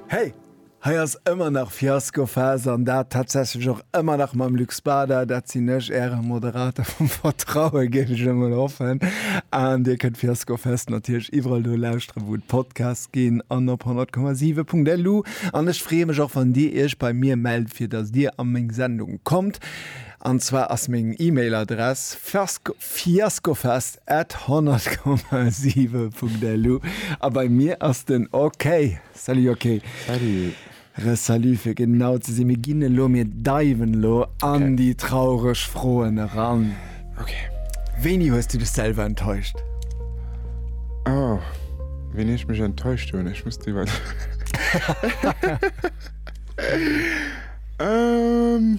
Hey! Hei ass ëmmer nach Fiaskophas an dat tatsächlech och ëmmer nach mam Luc Spada. Dat sinn ech, Äre Moderator vum Vertrauen, géif ech emol hoffen. An Dir kënnt Fiaskofest natierlech iwwerall do lauschteren, wou et Podcasts ginn an op 100,7.lu. An ech freeë mech och, wann Dir Iech bei mir mellt, fir dass Dir a meng Sendung kommt. An zwar ass meng E-Mail-Adress fiasko. Fiaskofest at 100,7.lu a bei mir ass den OK. Salut OK. Salut. Re Salut fir genau ze sinn. Mir ginn elo, mir diven elo an okay. déi traureg Froen eran. Okay. Wéini hues du dech selwer enttäuscht? Oh, wéini ech mech enttäuscht hunn? Ech muss iwwer. ähm.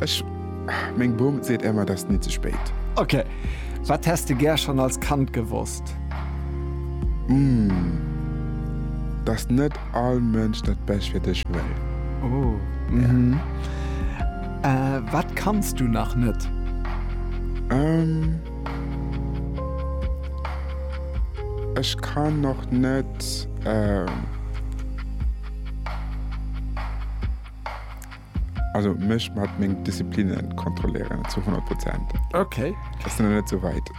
Ech, meng Bum seet emmer dass ni ze spéit. Ok, wat häss de gär schon als Kand gewosst? Umm, dass net all Mënsch dat Bescht fir dech wëll. Oh, mhm. Wat kanns du nach net? Umm, ech kann nach net. Also mech mat meng Diszipline kontrolléieren zu 100 Prozent. Okay. Dat ass nach net esou wäit.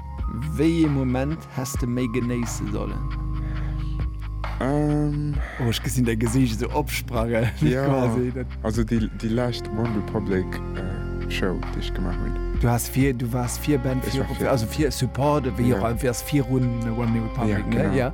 Wéi ee Moment häss de méi genéisse sollen? Ähm. Oh, ech gesinn däi Gesiicht esou opsprange quasi. Jo, also déi lescht OneRepublic Show, déi ech gemaach hunn. Du has vir, du waars Virband fir, also fir Support, wéi och, du waars virun OneRepublic, ne? Jo, genau.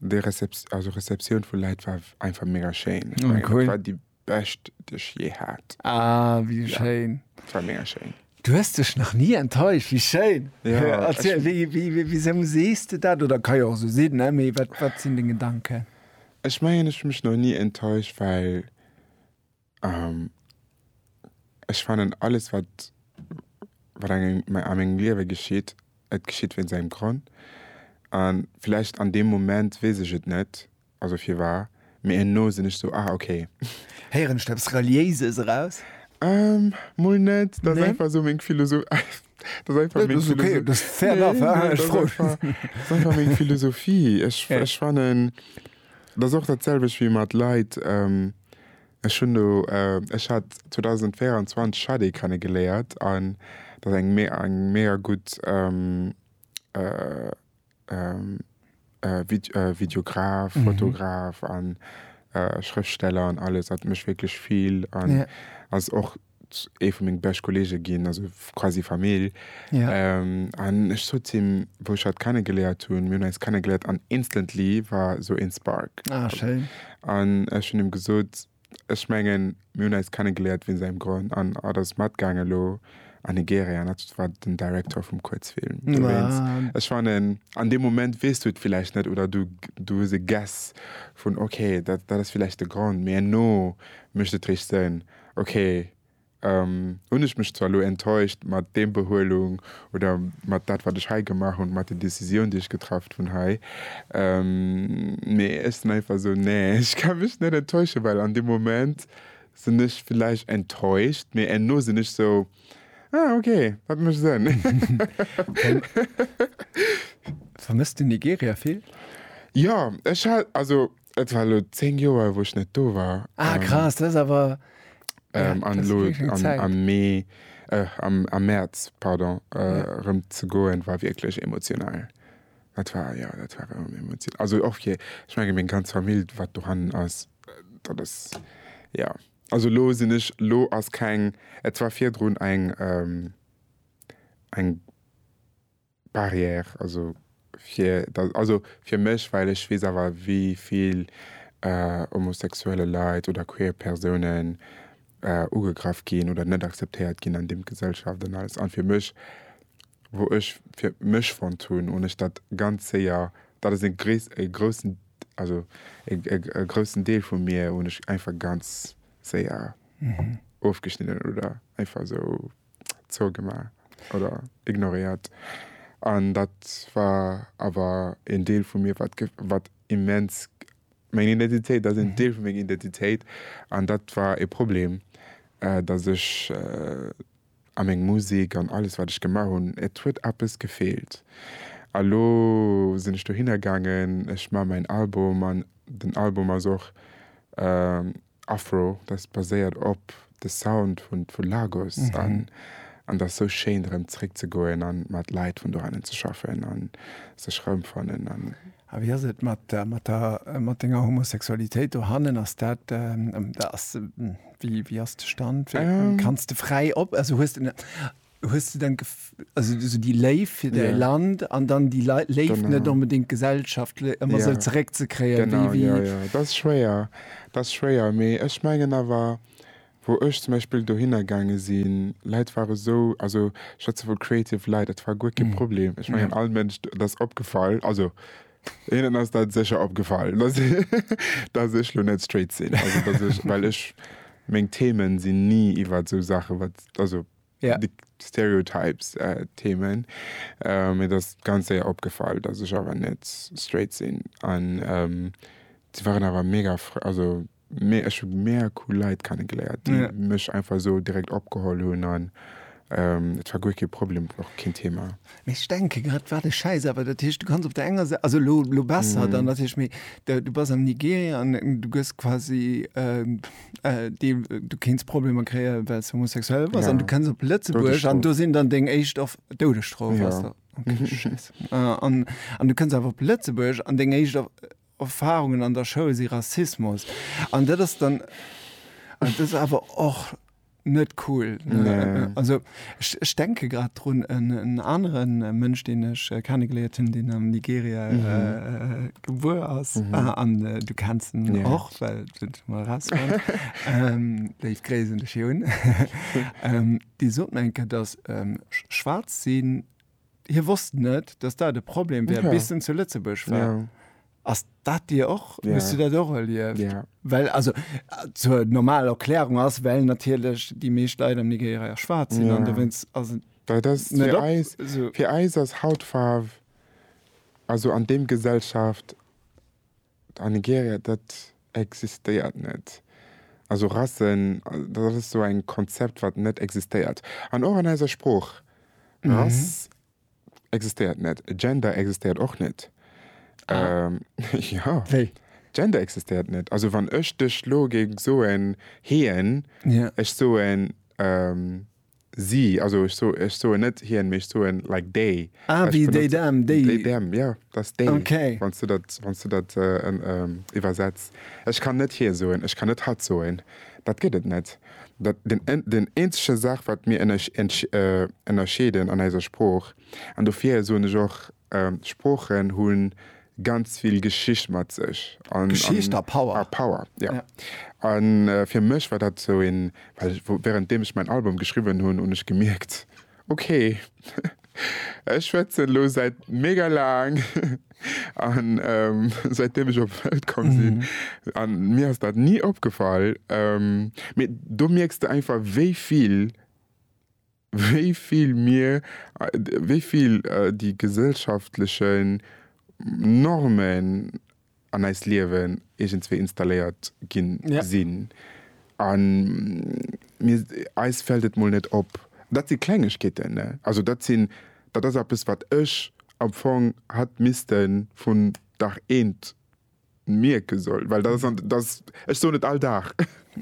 Déi Receptioun, also Receptioun vu Läit war einfach mega schéin. Ech mengen, dat war déi bescht, déi ech jee hat. Ah, wéi schéin. Dat war mega schéin. Du hues dech nach ni enttäuscht, wéi schéin. Erziel, wisou sees de dat? Oder ka jo och esou sinn, mee wat sinn deng Gedanken? Ech mengen, ech hu mech nach ni enttäuscht, well. Ech fannen alles wat wat engem a mengem Liewe geschitt, et geschitt wéinst engem Grond. An villäicht an deem Moment weess ech et net, also firwar, mee herno sinn ech sou, ah ok. Héieren ech do eppes Reliéises eraus? Mol net, dat ass einfach sou meng Philosoph. Dat ass einfach meng Philosophie. Nee, dat ass ok, fair enough, hein, ech froen. Dat ass einfach meng Philosophie. Ech fannen, dat ass och dat selwecht wéi mat Leit, Ech hunn do, ech hat 2024 Shadé kennegeléiert an dat ass eng eng mega gutt Videograf, Fotograf an Schrëftsteller an alles. Hat mech wierklech vill an ass och ee vu meng bescht Kollege ginn, also quasi Famill. Ja. Ähm, an ech sot him, wou ech hatt kennegeléiert hunn, mir hunn eis kennegeléiert an instantly war esou een Spark. Ah, schéin. An ech hunn him gesot, ech mengen, mir hunn eis kennegeléiert wéinst engem Grond. An hatt ass matgaangen elo an Nigeria an hatt war den Director vum Kuerzfilm dowéinst. Ah. Ech fannen, an deem Moment weess du et villäicht net oder du, du hues e Guess vun, okay, dat, dat ass villäicht de Grond, mee herno mécht et richteg Sënn. Ok, hunn ech mech zwar elo enttäuscht mat deem Behuelung oder mat dat wat ech hei gemaach hunn, mat der Décisioun déi ech getraff hunn hei, mee ech sinn einfach esou, nee ech ka mech net enttäuschen, well an deem Moment sinn ech villäicht enttäuscht, mee enno sinn ech esou, ah ok, dat mécht Sënn. Vermësst du Nigeria vill? Jo, ech hat also Et war elo 10 Joer wou ech net do war. Ah krass, dat ass awer, ja, dat ass wierklech eng Zäit. An elo am Mee, am Mäerz, pardon, erëm ze goen, war wierklech emotional. Dat war, jo, dat war erëm emotional. Also och fir, ech menge meng ganz Famill wat dohannen ass, dat ass, jo. Also elo sinn ech, elo ass keng, et war virdrun eng, eng. Barrière, also fir dat, also fir mech, well ech weess awer wéi vill homosexuelle Leit oder queer Persounen ugegraff ginn oder net akzeptéiert ginn an dem Gesellschaft an alles an fir mech, wou ech fir mech fonnt hunn hunn ech dat ganz séier, dat ass e gréis, e groussen, also e groussen Deel vu mir hunn ech einfach ganz séier ofgeschnidden oder einfach esou. zougemaach oder ignoréiert. An dat war awer een Deel vu mir, wat wat immens meng Identitéit, dat ass een Deel vu menger Identitéit. An dat war e Problem, datt ech a meng Musek an alles, wat ech gemaach hunn, et huet eppes gefeelt. A lo sinn ech dohinner gaangen, ech maache mäin Album an den Album ass och Afro, dat baséiert op de Sound vun vu Lagos an an ass sou schéin erëm zréck ze goen an mat Leit vun dohannen ze schaffen an sech erëmfannen an. A wéi ass et mat mat der mat denger Homosexualitéit dohannen? Ass dat ass wéi wéi ass de Stand? Kanns de fräi op also hues de Hues du dann also esou déi Léift fir däi Land an dann déi Léift net onbedéngt gesellschaftlech ëmmer esou zeréck ze kréien? Genau, jo, jo, dat ass schwéier, dat ass schwéier. Mee ech mengen awer, wou ech zum Beispill dohinner gaange sinn, Leit ware esou, also schwätze vu creative Leit, dat war guer kee Problem. Ech mengen all Mënsch, dat ass opgefall, also hinnen ass dat sécher opgefall, datt ech elo net straight sinn, also datt ech, well ech, meng Themen sinn ni iwwert esou Saache wat, also yeah. de Stereotypes äh, Themen. Äh, mir das ganz séier opgefall, dass ech awer net straight sinn. An ähm, sie waren awer mega also mé ech hun mé cool Leiit kennengeléiert, die yeah. mech einfach so direkt opgeholl hunn an ähm, et war guer ke Problem och kein Thema. Mech denke grad war de Scheiß awer dat Hicht du kannst op der enger se also lo, lo besser mm. dann dat Hicht méi du bass am Nigeria an du gëss quasi äh, Äh, die, du kenns Probleme kreieren, weil es homosexuell war. Ja. Und du kannst auf Lützeburg und du sind dann Ding echt auf Todesstrafe. Ja. Okay, mhm. Scheiße. Äh, und, und du kannst einfach auf Lützeburg und Ding echt auf Erfahrungen an der Schule sind Rassismus. Und das ist dann, und das ist aber auch net cool. Nee. Also ech denke grad drun en aneren Mënsch, deen ech äh, kennegeléiert hunn, deen am Nigeria mhm. äh, gebuer ass mhm. ah, an äh, du kennst en ja. och well raus ähm, Déi Gréisen de Chiun ähm, Di sot enke, datt ähm, schwaarz sinn Hie wosst net, datt dat e Problem wär, bis en zu Lëtzebuerg war. Ass dat Dir och? Hues du dat och erlieft? Well, also zur normal Erklärung ass, well natierlech déi meescht Leit am Nigeria jo schwaarz sinn an dowéinst ass et net op. Fir eis ass Hautfaarf, also an deem Gesellschaft. A Nigeria, dat existéiert net. Also Rassen, dat ass esou eng Konzept wat net existéiert. An och an eiser Sprooch, Rass existéiert net, Gender existéiert och net. Jo, Gender existéiert net. Also wann ech dech lo géing soen, hien, ech soen, Si, also ech so, ech soen net hien, mee ech soen like they. Ah, Ech wéi déi benotze- Dam, déi. They, them, ja, dass déi, Okay. wann s du dat, wann s du dat äh, en, ähm, iwwersetz. Ech kann net hie soen, ech kann net hatt soen. Dat gëtt et net. Dat, den, en, den eenzege Saach, wat mir ënnersch, entsch, äh, ënnerscheeden an eiser Sprooch, an dofir soen ech och, Sproochen hunn ganz vill Geschicht mat sech an Geschicht a Power. A Power, jo. An fir mech war dat sou een, well während deem ech mäin Album geschriwwen hunn, hunn ech gemierkt, okay, ech schwätzen elo säit mega laang an säit deem ech op d'Welt komm sinn an mir ass dat ni opgefall, mee do mierks de einfach wéi vill wéi vill mir, wéi vill déi gesellschaftlechen Normen an eist Liewen iergendswéi installéiert gi sinn. A mir, eis fält et mol net op. Dat si Klengegkeeten, ne? Also dat sinn, dat ass eppes, wat ech am Fong hätt misste vun Dag eent mierke soll, well dat ass an dass ech soen et all Dag,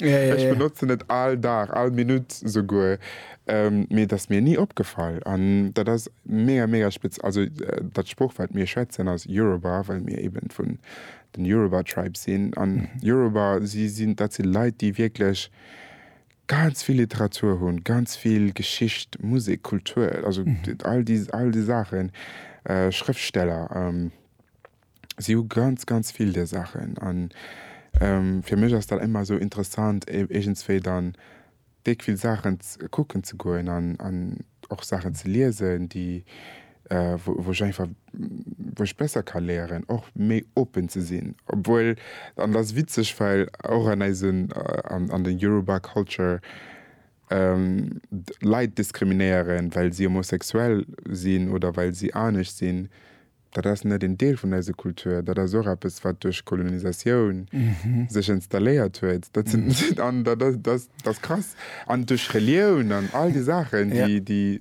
ech benotzen et all Dag, all Minutt souguer, mee et ass mir ni opgefall an dat ass mega, mega spez. Also dat Sprooch wat mir schwätzen ass Yoruba, well mir eben vun den Yoruba Tribe sinn an Yoruba si sinn, dat si Leit déi wierklech ganz vill Literatur hunn, ganz vill Geschicht, Musek, Kultur, also all déi all déi Saachen, Schrëftsteller. si hu ganz, ganz vill där Saachen. An fir mech ass dat ëmmer esou interessant, iergendswéi dann déck vill Saachen kucken ze goen an och Saachen ze liesen, déi, wou ech einfach, wou ech besser ka léieren, och méi open ze sinn. Obwuel, an dat ass witzeg, well och an eisen, an der Yoruba Culture Leit diskriminéieren, well si homosexuell sinn oder well si anescht sinn, Dat ass net een Deel vun eiser Kultur. Dat ass och eppes, wat duerch Kolonisatioun sech installéiert huet. Dat sinn, an dat ass, dat, dat ass krass. An duerch Relioun an all déi Saachen, déi, déi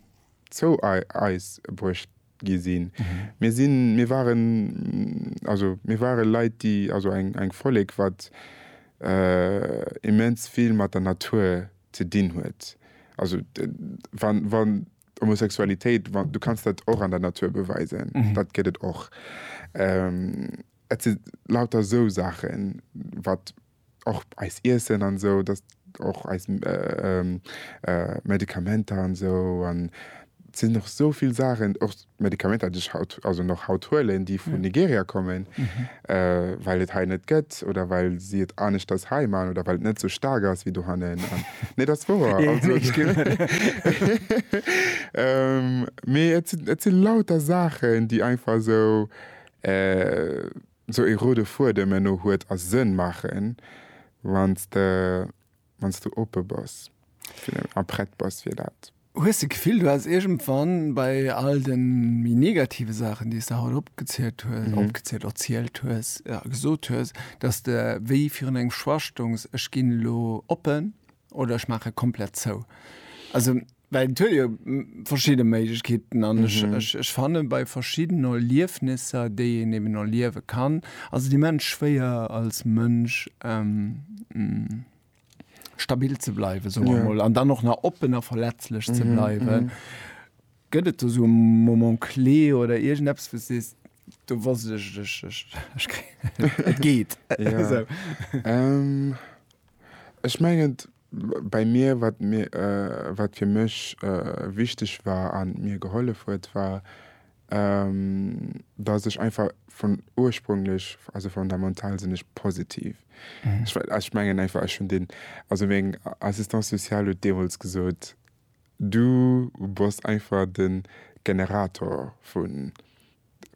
zou eis bruecht gi sinn. Mir sinn, mir waren, also mir ware Leit, déi, also eng, eng Vollek, wat immens vill mat der Natur ze dinn huet. Also wann, wann. Homosexualitéit, du kanns dat och an der Natur beweisen, dat gëtt et och. Et si lauter esou Saachen, wat och eist Iessen an esou, dat och eis Medikamenter an esou. An et sinn och esou vill Saachen, och Medikamenter, déi ech haut, also nach haut huelen, déi vun Nigeria kommen. well et hei net gëtt oder well si et aneschters hei man oder well et net sou staark ass wéi dohannen. Nee, dat ass wouer. Mee et sinn, et sinn lauter Saachen, déi einfach sou, sou e rode Fuedem enno huet a Sënn maachen, wann s de wann s du oppe bass fir den a prett bass fir dat. Hues de Gefill, du häss iergendwann bei all de méi negative Saachen, déi s de haut opgezielt hues, opgezielt, erzielt hues, ja gesot hues, dass de wéi virun engem Schwachstongs, Ech ginn elo oppen oder ech maache komplett zou? Also. Well et huet jo verschidde Méiglechkeeten an ech, ech, ech fanne bei verschiddenen Erliefnisser, déi een eben erliewe kann, ass et immens schwéier als Mënsch stabil ze bleiwen, soe mer mol, an dann och nach oppen a verletzlech ze bleiwen. Gëtt et do sou e Moment clé oder iergendeppes, wou s sees, do wosst ech, ech, ech, ech kréien, et geet esou? Ech mengen. Bei mir, wat mir, wat fir mech wichteg war an mir gehollef huet, war dass ech einfach vun ursprünglech, also fondamental sinn ech positiv. Ech mengen einfach ech hunn den, also meng Assistante sociale huet deemools gesot, du bass einfach den Generator vun,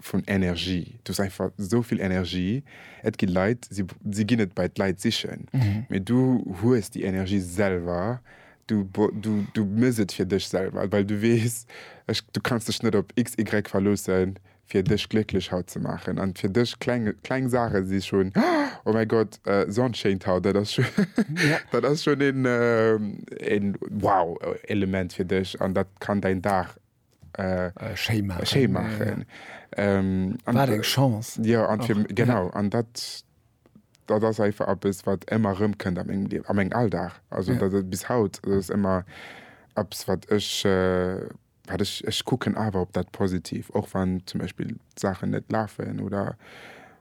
vun Energie. Du hues einfach esou vill Energie. Et gi Leit, si, si ginn et bei d'Leit sichen. Mee du hues déi Energie selwer. Du, bo- du, du mëss et fir dech selwer, well du weess, ech, du kanns dech net op XY verloossen, fir dech glécklech haut ze maachen. An fir dech, kleng, kleng Saache si schonn, Oh mäi Gott, Sonn schéint haut, dat ass schon, dat ass schon een, een Wow-Element fir dech an dat kann däin Dag schéi maachen. Wat eng Chance! Jo, genau. An dat ass einfach eppes, wat ëmmer erëmkënnt a mengem Liewen, a mengem Alldag. Also dat ass bis haut, dat ass ëmmer eppes, wat ech, wat ech, ech kucken awer op dat Positiv, och wann zum Beispill Saachen net lafen oder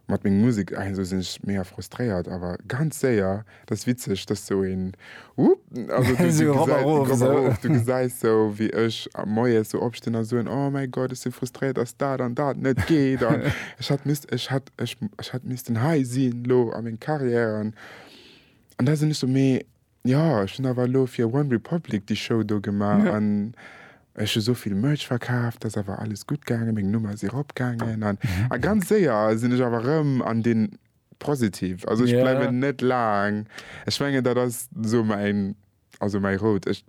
Mat menger Musek ah esou sinn ech mega frustréiert awer ganz séier. Dat ass witzeg, dass sou een Whoop also du du gesäis Ropp erof du gesäis sou wéi ech moies sou opstinn a soen, oh mäi Gott ech si frustréiert dass dat an dat net geet an ech hätt misst ech hätt ech ech hätt missten hei sinn elo a meng Carrière an an da sinn ech sou mee Jo, ech hunn awer elo fir OneRepublic déi Show do gemaach an ech hu sou vill Merch verkaaft, dat ass awer alles gutt gaangen, meng Nummer ass eropgaangen an a ganz séier sinn ech awer erëm an de Positive. Also ech bleiwen net laang. Ech mengen dat ass esou mäin, also mäi Rout, ech,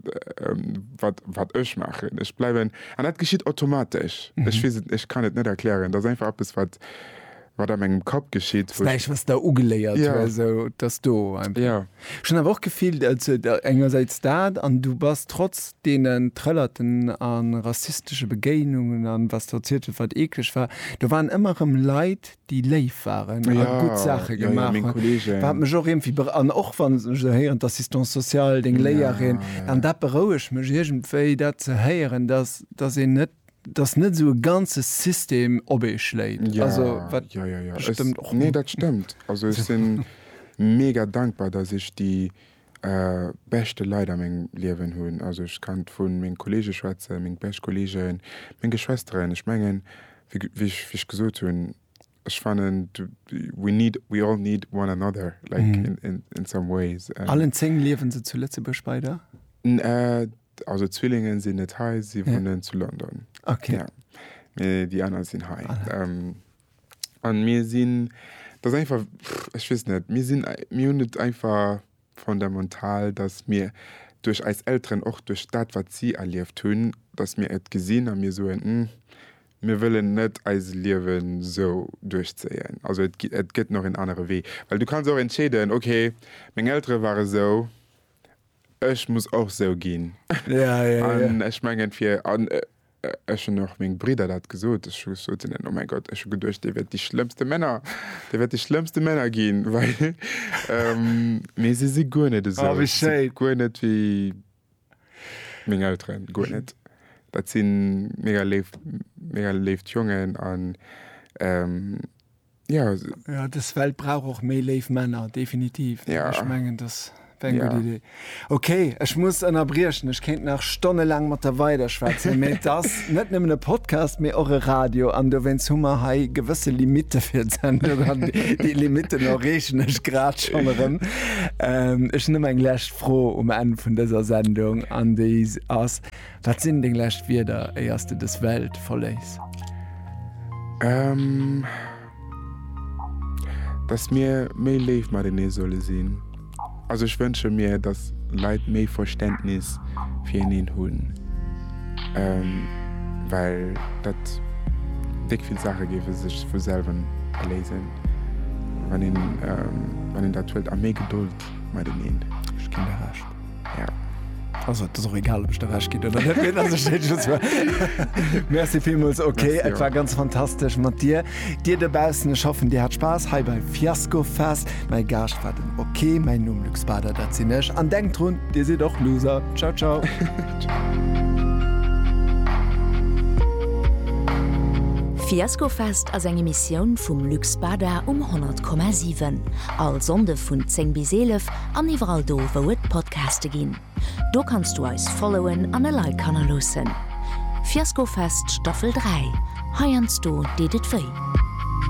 wat, wat ech maachen. Ech bleiwen, an dat geschitt automatesch, ech weess et, ech kann et net erklären, dat ass einfach eppes wat, wat a mengem Kapp geschitt, wou ech. Näischt, wat s de ugeléiert hues. Ja. Sou, et ass do einfach. Ja. Ech hunn awer och gefillt, also engersäits dat an du bass trotz deenen Trëllerten a rassistesche Begéinungen an wat s de erzielt hues, wat eekleg war, do waren ëmmer erëm Leit, déi léif waren a gutt Saache Ja, ja, ja, gemaach meng hunn. Kollegen. Wat mech och iergendwéi be an och wann ech esou héieren, d'Assistance sociale, deng Léierin, an dat berouegt mech iergendwéi, dat ze héieren, dass, dass een net dass net esou e ganze System op ee schléit. Ja, also, wat ja, ja, ja. Stëmmt och. Nee, dat stëmmt. Also ech si mega dankbar, dass ech déi äh, beschte Leit a mengem Liewen hunn. Also ech kann vu menge Kollege schwätzen, meng bescht Kollegen, meng Geschwësteren. Ech mengen, wéi, wéi ech, wéi ech gesot hunn, ech fannen, we need, we all need one another, like mm. in, in, in some ways. Allen zéng liewen se zu Lëtzebuerg bei der? N, äh, Also Zwillingen sinn net hei, si wunnen ja. zu London. Okay. Ja. Mee déi aner sinn hei. Ah, ja. ähm, an mir sinn dat einfach ech wis net mir sinn mir hunn net einfach fundamental, dass mir duerch eis Elteren och duerch dat wat si erlieft hunn, dass mir et gesinn a mir soen hm, mir wëllen net eis Liewen so duerchzéien. Also et, et gëtt noch en anere Wee. Well du kannst och entscheeden, okay, meng Eltere ware sou, Ech muss och sou ginn. An ech mengen fir an ech hunn och meng Bridder dat gesot, ech hu gesot zu hinnen, oh mäi Gott, ech hu geduecht dir wäert déi schlëmmste Männer, dir wäert déi schlëmmste Männer ginn, well mee si si guer net esou, si si guer net wéi meng Elteren, guer net. Dat si mega léif, mega léift Jongen an. Ja, ja des Welt brauch och méi léif Männer, definitiv. Ja. Ech mengen dass eng ja. gut Idee. Okay, ech muss ënnerbriechen. Ech kéint nach Stonne laang mat der weider schwätzen. Mee dass net nëmmen e Podcast, mee och e Radio an dowéinst hu mer hei gewësse Limitte fir d'Sendung an déi Limitten erreechen ech grad schon erëm. Ähm, ech nëmm eng läscht Fro um Enn vun dëser Sendung an déi ass. Wat sinn deng lescht Wierder éier s de dës Welt verléiss? Ehm. Dass mir méi léif matenee solle sinn. Also ech wënsche mir, dass Leit méi Verständnis fir eneen hunn. Ehm. Well dat déck vill Saache géife sech vu selwen erléisen, wann een, ehm, wann een dat huet a méi Gedold mateneen. Ech ginn der Recht. Also et ass och egal, ob ech der Recht ginn oder net. Mir lasse Schéin just war. Merci villmools. Okay, Merci et war och. ganz fantastesch mat dir. Dir dobaussen, ech hoffen, Dir hat Spaass hei bei Fiasco Fest. Mäi Gaascht war den OK. Mäin Numm Luc Spader, dat sinn ech. An denkt drun, Dir sidd och Loser. Ciao, ciao. Fiasco Fest ass eng Emissioun vum Luc Spader um 100,7. All Sonnde vun 10 bis 11 an iwwerall do wou et Podcaste ginn. Do kanns du eis followen an e Like hannerloossen. Fiaskofest Staffel 3, heiansdo deet et wéi.